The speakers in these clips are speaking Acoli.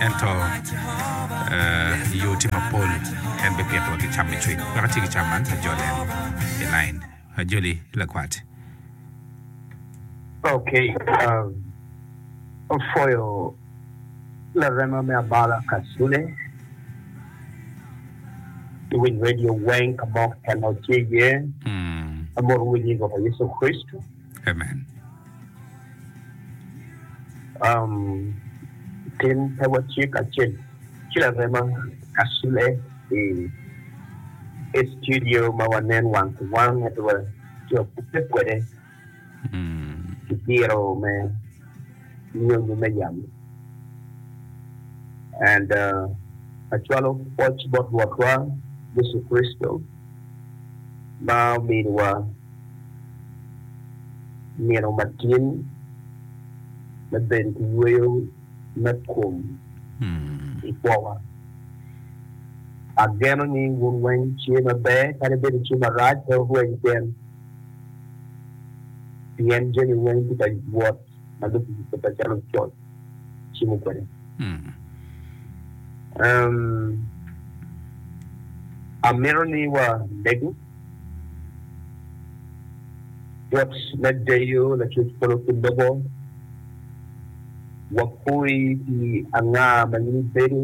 Ento yo tye mapol, en bipitowa ki cam me cwiny. Wek atye ki cam man, ajolo en i lain. Ajoli, lakwat. Ok, apwoyo larema me abala Kasule. Iwiny redio weng ka mo keken ma watye iye. Amwodo winyi i Lwak Yecu Kricito. Amen. Um, tin pe watye kacel ki larema Kasule i i studio ma wanen wang ki wang, ento watye wakubbe kwede ki diro me nyonyo me yamo. And uh, acwalo pwoc bot Rwotwa Yecu Kricito ma ominiwa nino matin me bedo ki yweyo me kom i kwowa. Ageno ni wun weng tye maber kadi bed itye marac pe wurwec keken, pien jami weng tye ka wot ma dong kikube pe calo coc cimo kwede. Amito ni wamege. Bot me deyo Lacwec polo ki lobo, wapoi pi anga ma in ibedo.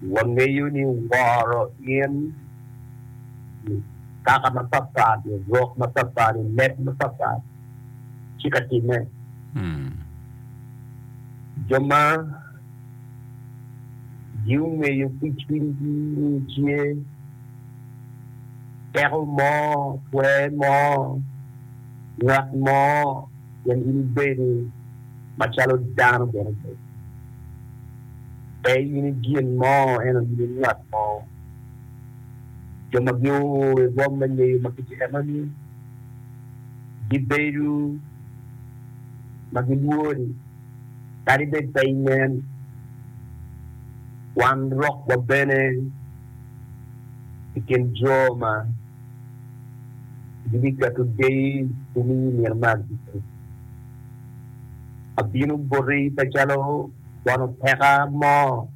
Wangeyo ni woro in i kaka mapatpat, i rok mapatpat, i leb mapatpat ci ka timme. Jo ma. gingeyo ki cwinygi ni tye teko mo, twer mo, ngat mo pien in ibedo macalo dano bene pe in i gin mo ento in i ngat mo. Jo ma gio i rwom me ngeyo ma kit enoni gibedo ma gilwori. Kadi bed pe inen, wan rok wa bene i kin jo ma gibiketo deyi i ni i nino me agikki. Abino boti pe calo bono peka mo,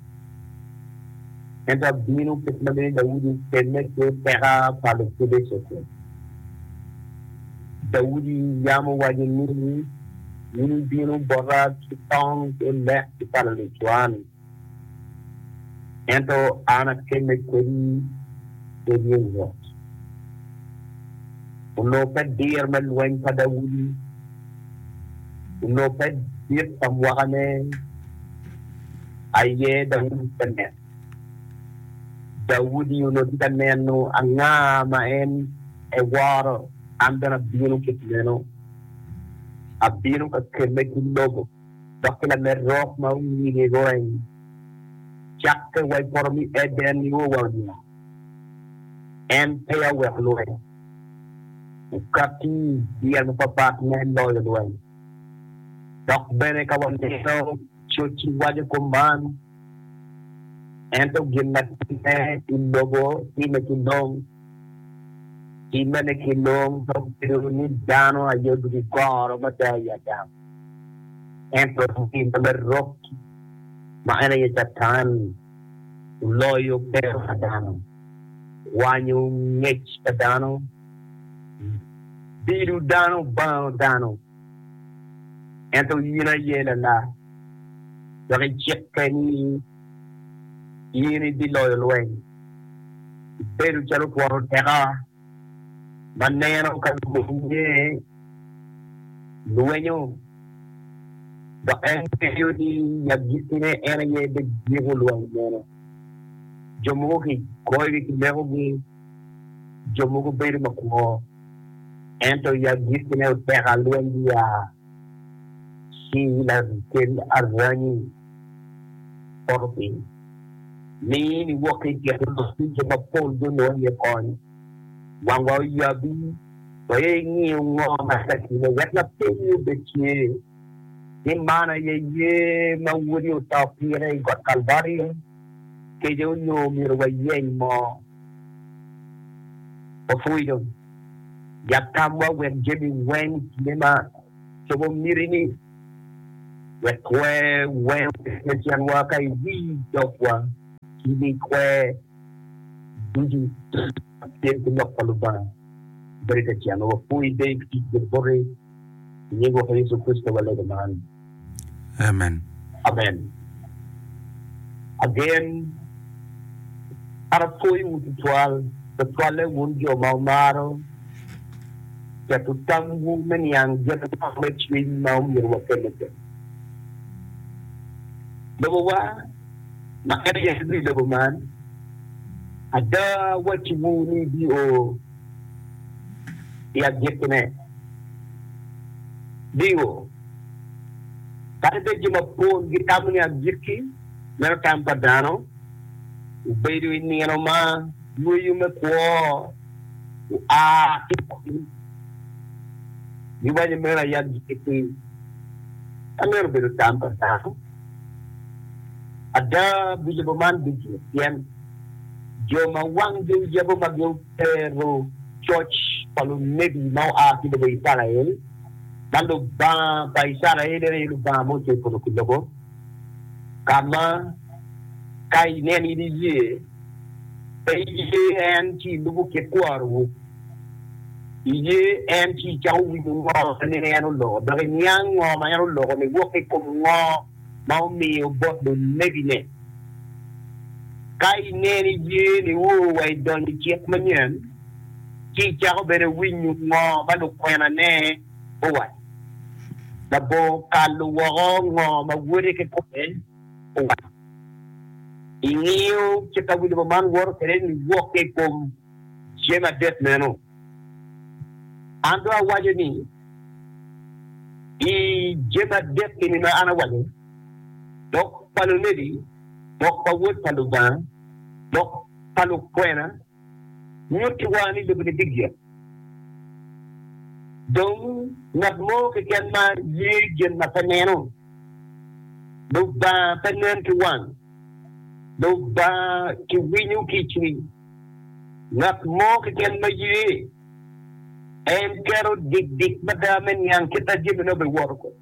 ento abino kit ma dong Daudi okemme ki peka pa Lupiliciti. Daudi yam owaco ni. In ibino bota ki tong ki lek ki pala lucwan, ento an akemme kodi ki ryeny rwot. Olubbe dir me lweny pa Daudi, olubbe dit pa mwakane aye Daudi tye ka neno. Daudi onongo tye ka neno anga ma en eworo, an bene abino kit meno. Abino ka kelle ki lobo dok ki lamed rok ma onyige goreng, cakke wa i poto me Eden nio wa oniang. En peya oweko lweny, okatti i yel mapatpat me loyo lweny. Dok bene ka waneno coc-ci waco kop man, Ento gin ma timme ki lobo timme ki long. Timmene ki long pe obedo ni dano aye odoko i goro mada i Adam, ento timme me rok ma en aye Catan oloyo kero pa dano, kwanyo ngec pa dano, bido dano bango dano. Ento in aye lalar, dok icikke ni in ibiloyo lweny. Ibedo calo twon oteka ma neno ka lumonye lwenyo, dok en ngeyo ni i agikine en aye bigiko lweny meno. Jo mogo kigoyogi ki mekogi. Jo mogo bedo makwo, ento yab gikkine oteka lweny gia ki i lakel aranyi poto piny. Mi in iwok ki i kin lok ducu jo mapol gunongo iye kony. Wangwa oyabi, waye ingiyo ngo ma tye ka timme wek lapeny-nyi obed tye, ni man aye yer ma Wodi oto pire i got Kalvario? keco nyo myero wayeny mo wapwonyo yat tamwa wek jami weng i kine ma cobo miti-ni wek kwer weng obed me tyenwa ka iwii dogwa ki ni kwer ducu tye ki lok pa Lubanga. Bedo tetyenwa wapwony bene i tic Luboti. I nying Woko Yecu Kricito walego man. Amen. Amen. Agen. An apwoyowu tutwal, tutwalle wun jo ma wumaro keto tamwu me niang jami mogo me cwiny ma omyero wakelle kene. Lobowa, ma en aye Lubiri lobo man, ada awacciwu ni ibio. i agikine. Bingo? Kadi bed jo mapol gitamo ni agikki meno tam pa dano obedo i nino ma yweyo me kwo oa ki i kom, giwaco meno aye agikki. Ka meno obedo tam pa dano, Ada, bilubo man ducu pien jo ma wanggi oyabo ma gutero coc pa lunebi ma oa ki lobo Icrael, ma Lubanga pa Icrael en aye Lubanga ma ocweyo polo ki lobo, ka ma ka ineno in iye, pe iye en ci ilubo kit kwonowu. Iye en ci icako winyo ngo ma nino en oloko, dok iniang ngo ma en oloko ni wok i kom ngo ma omiyo bot lulebine. Ka ineno iye ni oo wa idonyo i cik manyen, ci icako bene winyo ngo ma lukwenane owaco. Labor kalo woko ngo ma wode ki kome owaco. Ingiyo ci ka wilibo man woto kwede ni wok i kom. cen adek meno, an dong awaco ni, I cen adek eni ma an awaco, lok pa lunebi, lok pa Wod pa Lubanga, lok pa lukwena nyutiwa ni lobo-ni bigik. Dong ngat mo keken ma ye gin ma pe neno, Lubanga pe nen ki wang, Lubanga kiwinyo ki i cwiny. Ngat mo keken ma ye en keto dikdik mada me niang kit ma jami nongo obiwoto kwede.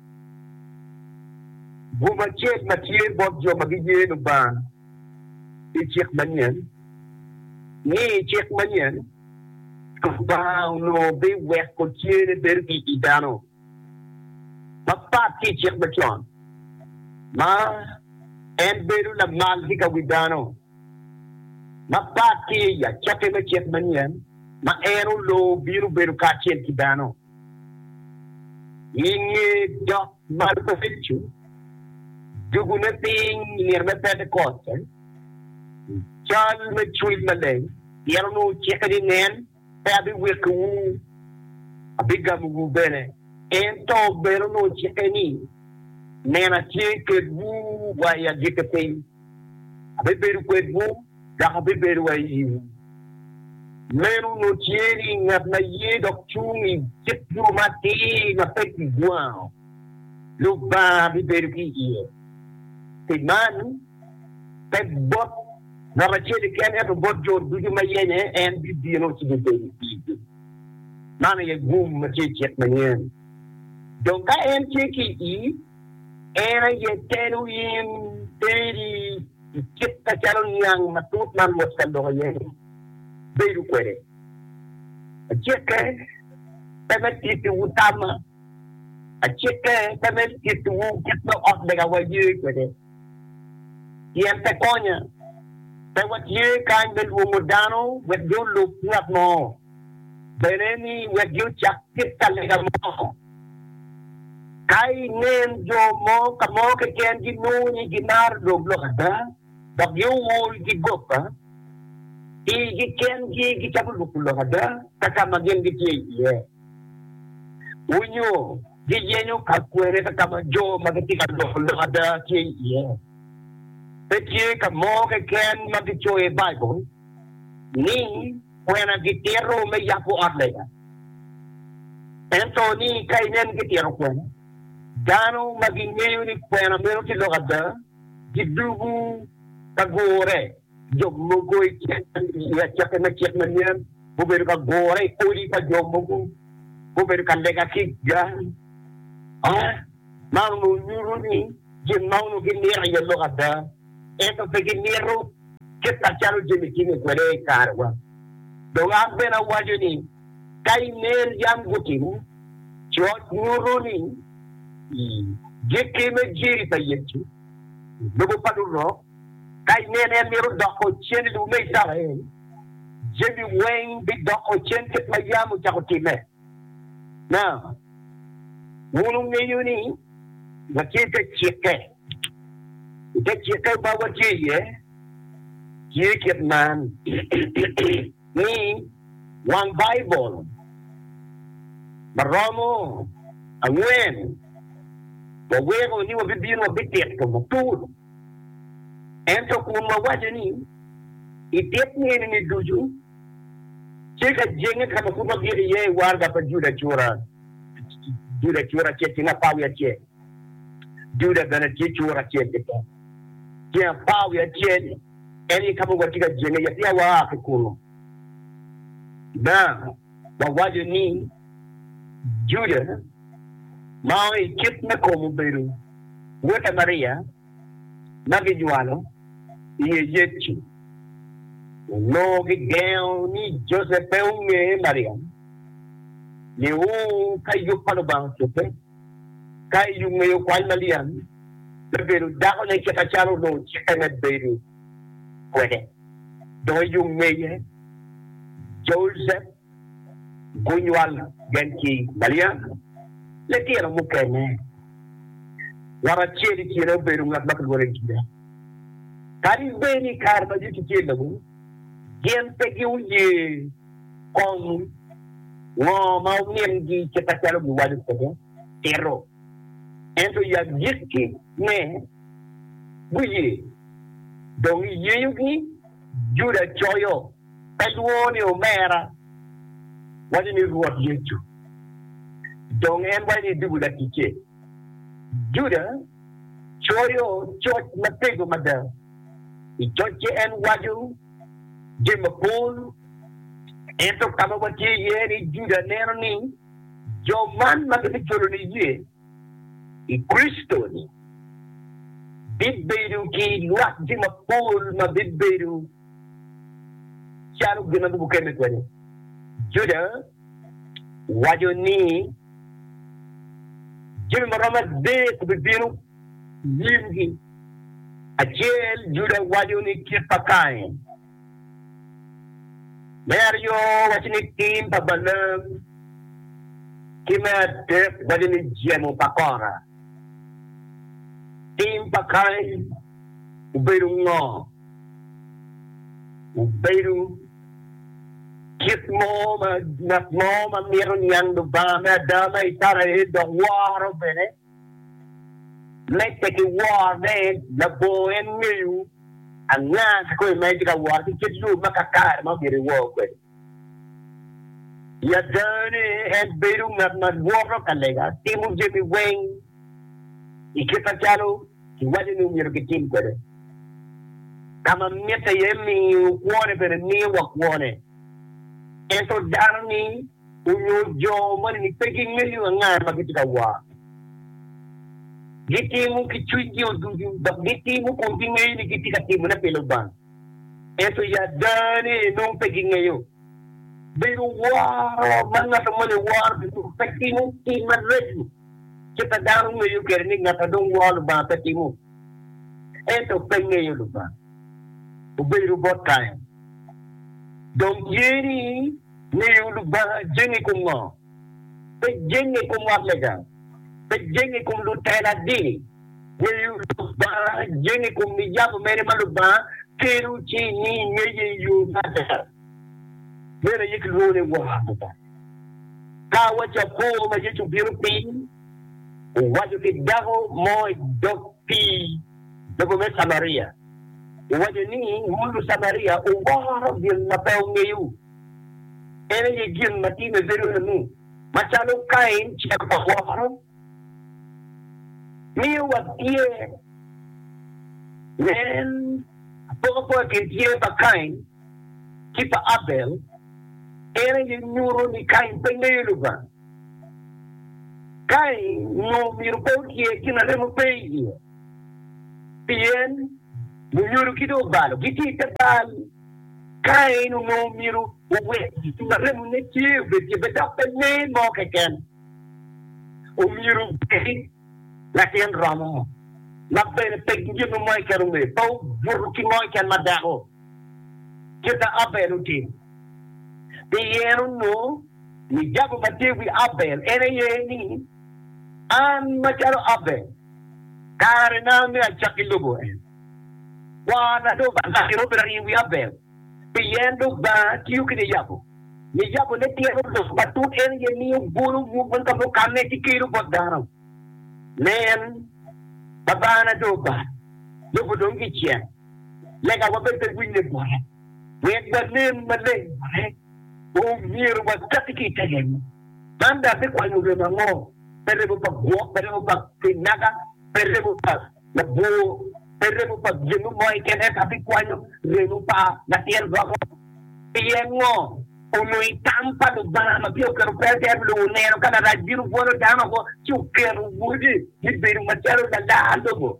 Bwome acel ma tye bot jo ma giye Lubanga i cik manyen ni i cik manyen Lubanga onongo biweko tyene bedo i i dano mapat ki i cik macon ma en bedo lamal ki ka wi dano. Mapat ki i acokke me cik manyen ma en oloo bino bedo kacel ki dano i nge dok mareco dogone piny i nino me Pentekote. I cal me Cwiny Maleng, pien onongo ocikke ni, Nen! pe abiwekkiwu, abigamowu bene. Ento bene onongo cikke ni, 'Nen atye kedwu wa i agikki piny, abibedo kwedwu dok abibedo wa i iwu. Meno onongo tye ni ngat ma ye dok cung i kit yo mo atir ma pe kigwango, Lubanga bibedo ki iye. Pi man, pe bot. ngat acel keken, ento bot jo ducu ma yenye, en bibino ci bibedo i pigi. Man aye gum ma tye i cik manyen. Dong ka en tye ki i ii, en aye telo in, teri i kit macalo niang matut ma Rwot ka loko iye-ni bedo kwede. Acikke pe me tittiwu tamma, acikke pe me tittiwu kit ma ot megawa ye kwede. pien pe konya. Pe watye kany me lwongo dano wek gulub ngat mo, bene ni wek gucak kit ka lega mo. Ka inen jo mo ka mo keken ginongo ni gimaro lok lok ada, dok giol ki goba, igi kengi gicako lubo lok ada ka ka ma gin gitye iye. Wunyo Giyenyo ka kwene ka ka ma jo ma gitye ka loko lok ada tye iye. Pe tye ka mo keken ma gicoyo i Baibul ni kwena gitito me yabo ot lega. Ento ni ka inen gitito kwena, dano ma gingeyo ni kwena meno tye lok ada gidugu ka gure. Jo mogo i kacokki me cik ma nen gubedo ka gure i odi pa jo mogo, gubedo ka lega ki i gang. Man onongo nyuto ni gin man onongo gimito iye lok ada, ento pe gimito kit macalo jami timme kwede i karewa. Dong an bene awaco ni, ka i ner yam gutimo coc, nyuto ni gikki me jeri pa Yecu, lubo pa lurok. Ka inen en myero doko cen i lobo me Icrael, jami weng bidoko cen kit ma yam ocako timme. Na. Wun wungeyo ni watye i te cikke, i te cikke ma watye iye tye kit man, ni wang Baibul ma romo angwen waweko ni wabibino wabitito matut. Ento kun wawaco ni, i dit nino-ni ducu, tye ka jenge ka ma pud wagik iye i waraga pa Juda cura, Juda cura acel tyen apar wiye acel, Juda bene tye cura acel ki pol tyen apar wiye acel, en aye ka ma watye ka jenge iye, pien waa ki kunnu. wawaco ni Juda ma ongo i kit me kom obedo wote Maria ma gijwalo iye Yecu. Onongo gigengo ni Josep pe onge Mariam, niu ka yub pa Lubanga ocobbe, ka i yub ngeyo kwany Maliam me bedo dakone kit acalo onongo cikke me bedo. kwede. Dong i yo ngeye, Josep gunywal gen ki Malia, litino mukene. Ngat acel i kine obedo ngat ma kilwongo ni Juda. Kadi bed i kare ma Yecu tye labongo, gin pe gioye kong ngo ma omingi kit ma calo giwaco kwede tito. Ento i agikkine, guye, dong i yeyogi Juda coyo pe lwongo ni Omera, waco ni Rwot Yecu. Dong en waco ni Dubu Laticce. Juda coyo coc matego mada, i cocce en waco jami mapol, ento ka ma watye iye ni Juda neno ni jo man ma gibijolo niye, i Kricito-ni, bibedo ki lwak jo mapol ma bibedo calo gin ma bibukemme kwede. Juda waco ni jami ma romo adek bibino i nyimgi. Acel, Juda waco ni kit pa Kain. Me aryo, wacci ni tim pa Balaam, ki me adek, wacci ni jemo pa Kora. Tim pa Kain obedo ngo? Obedo kit mo ma ngat mo ma mito niang Lubanga me ada ma icrael dok woro bene. Medde ki woro ne, labongo en ngeyo anga kikome ma en tye ka woro ki kit yo ma kakare ma omyero ewor kwede. I adane, en bedo ngat ma lwoto ka lega, timo jami weng i kit macalo kiwaco ni omyero kitim kwede. Ka ma mitte iye miyo kwone bene miyo wa kwone. Ento dano-ni, onyo jo ma pe gingeyo anga ma gitye ka war. Gitimo ki cwiny gi o ducu, dok gitimo kun gingeyo ni gitye ka timo ne pi Lubanga. Ento ya ada ni nongo pe gingeyo. Bedo woro ma ngat moni oworo ki Lubanga pe timo tim maraco kit ma dano ngeyo kwede ni ngat ma dong woro Lubanga pe timo. Ento pe ngeyo Lubanga obedo bot Kain dong tye ni Miyo Lubanga jenge i kom ngo? Pe jenge i kom ot lega, pe jenge i kom lutela dini. Miyo Lubanga jenge i kom niyamo mene ma Lubanga kelo ci imiyo ngeye i yo me ada. Meno aye kilwongo ni woro Lubanga. Ka awaco apor ma Yecu obino piny owaco ki dako mo i dog pii, Lobo me Camaria owaco ni mon Lucamaria oworo gin ma pe ongeyo. En aye gin ma time bedo lanu. Macalo Kain cek pa woro miyo watye nen apokapoka kin tyer pa Kain ki pa Abel, en aye nyuto ni Kain pe ngeyo Lubanga. Kain onongo omyero pe otyer gin ma remo pe iye, pien lunyodo ki dong obalo gitye i te bal. Kain onongo omyero owek gin ma remone tye obed ryebe dok pe lee mo keken. Omyero obedi latin romo ma bene pe gin mo keken ongeyo, pe obuto ki mo keken ma dako. kit ma Abel otimo. Pien onongo ni jabu ma tye i wi Abel en aye ni, An macalo Abel, karena me acak ki lubo en. Kwana dong ba naka enongo pe rariyo i wi Abel, pien Lubanga tiyo ki niyabu. Niyabune tyen olok matut, en aye miyo bolo nyung weng ka mukane ci kelo bot dano. Nen, Babana dong oba, lobo dong kicek. Lega wa bene pe winye bwota. Wek wanen maleng bwote, omyero wakati ki i te remo. Man dok bikwanyo remo ango? Pe remo pa gwok, pe remo pa kinaga, pe remo pa labwor, pe remo pa gin mo keken, ento bikwanyo remo pa latin romo. Pien ngo? Onongo i tam pa Lubanga ma peya oketo pe atir pi lobo oneno ka larac bino bwolo dano woko ci oketo Wode me bedo macalo lalar lobo.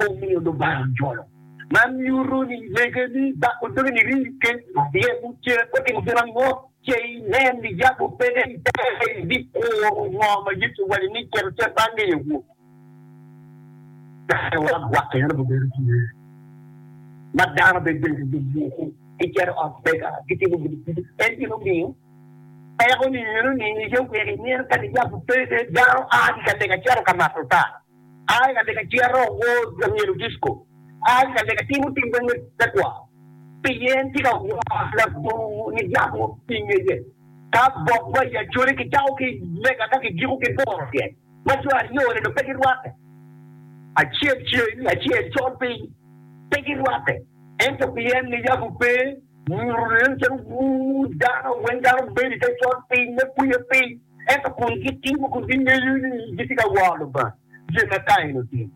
omiyo Lubanga ojolo. Man nyuto ni lege ni bako doge niri ki lye mucere pe otimo gin ango. Ce inen ni yam obedde i tere, ibikuro ngo ma Yecu owaco ni cito ce ba ngeyo awobi. Kare wa gwake en obibedo tye ma dano bene giyuko gicito ot lega gitimo gin ducu. En gin omiyo peko ni eno ni iye wer imino kadi yam obedde dano a ki ka lega cito ka mato ta. A i ka lega cito wo myero disco. A i ka lega timo tim dong me tekwaro. Pien tye ka woro labongo ni yat mo pi ngeye. Ka bok ma i acholi ki cako ki lega ka ki giko ki boro tyen ma jo aryo ni dong pe gi rwate. Acel ceng acel col piny. Pe gi rwate. Ento pien ni yabu pe nyuto nen calo wuu dano weng dano bedo i te col piny me kwiyo piny. Ento kun gitimo kun gingeyo ni gitye ka woro Lubanga, gin ma Kain otimo,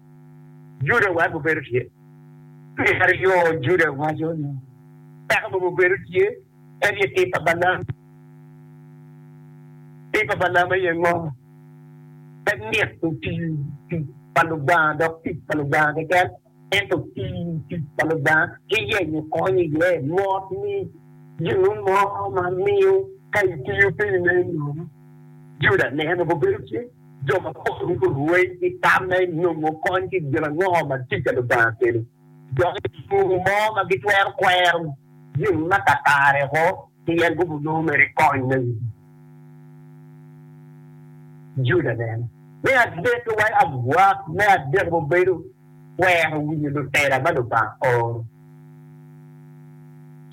Juda oweko gubedo tye. Me aryo, Juda waco ni peko mogo obedo tye, en aye tim pa Balam. Tim pa Balam aye ngo? En mito tic pa Lubanga dok tic pa Lubanga keken. Ento pii tic pa Lubanga ki yenyo kony iye mot ni ginu mo ma miyo ka itiyo piny me nom Juda neno mogo bedo tye. Jo mapol weko rweny ki tam me nongo kony ki gin ango ma tic pa Lubanga kelo. Dok i tung mo ma gitwero kwero gin ma kakare oko. Pi en gudo loo mere kony me wigi. Juda bene. Me adek, luwai agwak me adek gubedo kwero winyo lutela ma Lubanga oro,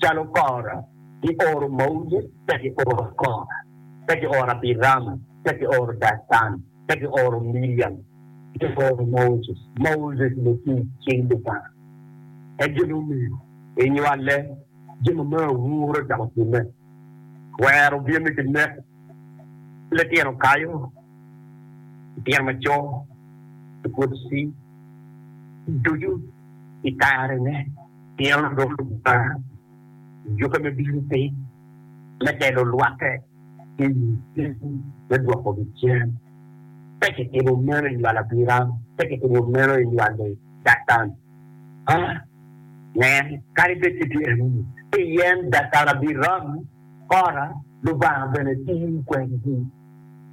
calo Kora, Gioro Moses, ka gioro Kora, ka gioro Abiram, ka gioro Datan, ka gioro Miriam, ka gioro Moses, Moses lutic cing Lubanga, en gin omego inywale. Jami me awura calo pinne twero bino ki nek pi litino kayo, litino maco, lugoci ducu i karene. Pien lub Lubanga jukke me bino piny me telo lwake ki i ceng me dwokogi cen. Pe kitimo meno i lwal Abiram, pe kitimo meno i lwal Datan. Ah, nen, kadi bed ni tye anunu, pien dakara biram kora, Lubanga bene tiyo kwedgi.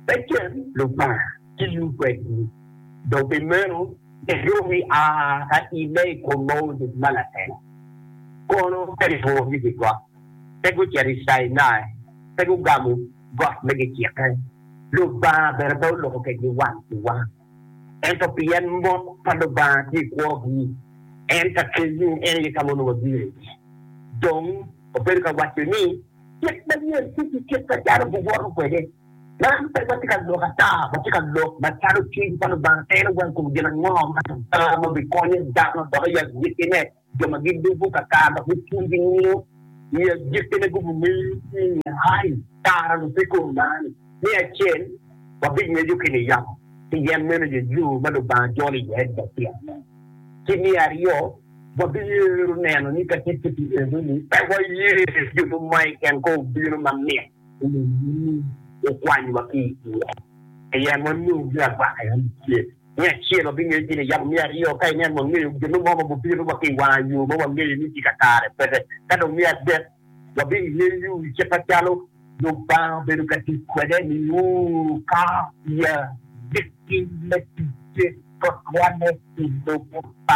Becen Lubanga tiyo kwedgi, dong pi meno giyobi a ka i lee i kom Moses ma lalela, kono pe gituro nyig i got, pe gucito i Cainai, pe gugamo got me gicikke, Lubanga bene pe oloko kwedgi wang ki wang. ento pien mot pa Lubanga tye i kwogi, en ka keyo en aye ka ma onongo gire iye. Dong, obedo ka waco ni, Kit manyen tye ki kit macalo giwoto kwede. Man pe watye ka lok ata, watye ka lok macalo cwiny pa Lubanga tero wa i kom gin ango ma Lubanga ma bikonyo dano dok i agikine. Jo ma gidugo kakaka gupur ki nyingo i agikkine gubimiyo cwinyi ai tara dong pe kom mani. Me acel, wabingweco ki niyamo pi yen meno je yo ma Lubanga jolo iye adwogi pi ane. Ki me aryo, wabiyero neno ni ka ticce pi enoni pe waye jo mo ma i ken kor obino ma mit onongo ni okwanywa ki iye pi yen wanongo gin agwaka yam acel. Me acel, wabingeyo gin iyabo. Me aryo, ka ineno wangeyo gin mo ma gubino wa ki i wanga yo ma wangeyo ni tye kakare kwede. Ka dong me adek, wabingeyo i kit macalo Lubanga obedo ka tic kwede niu, kapiya, me timme ticce, tutwalle i lobo pa.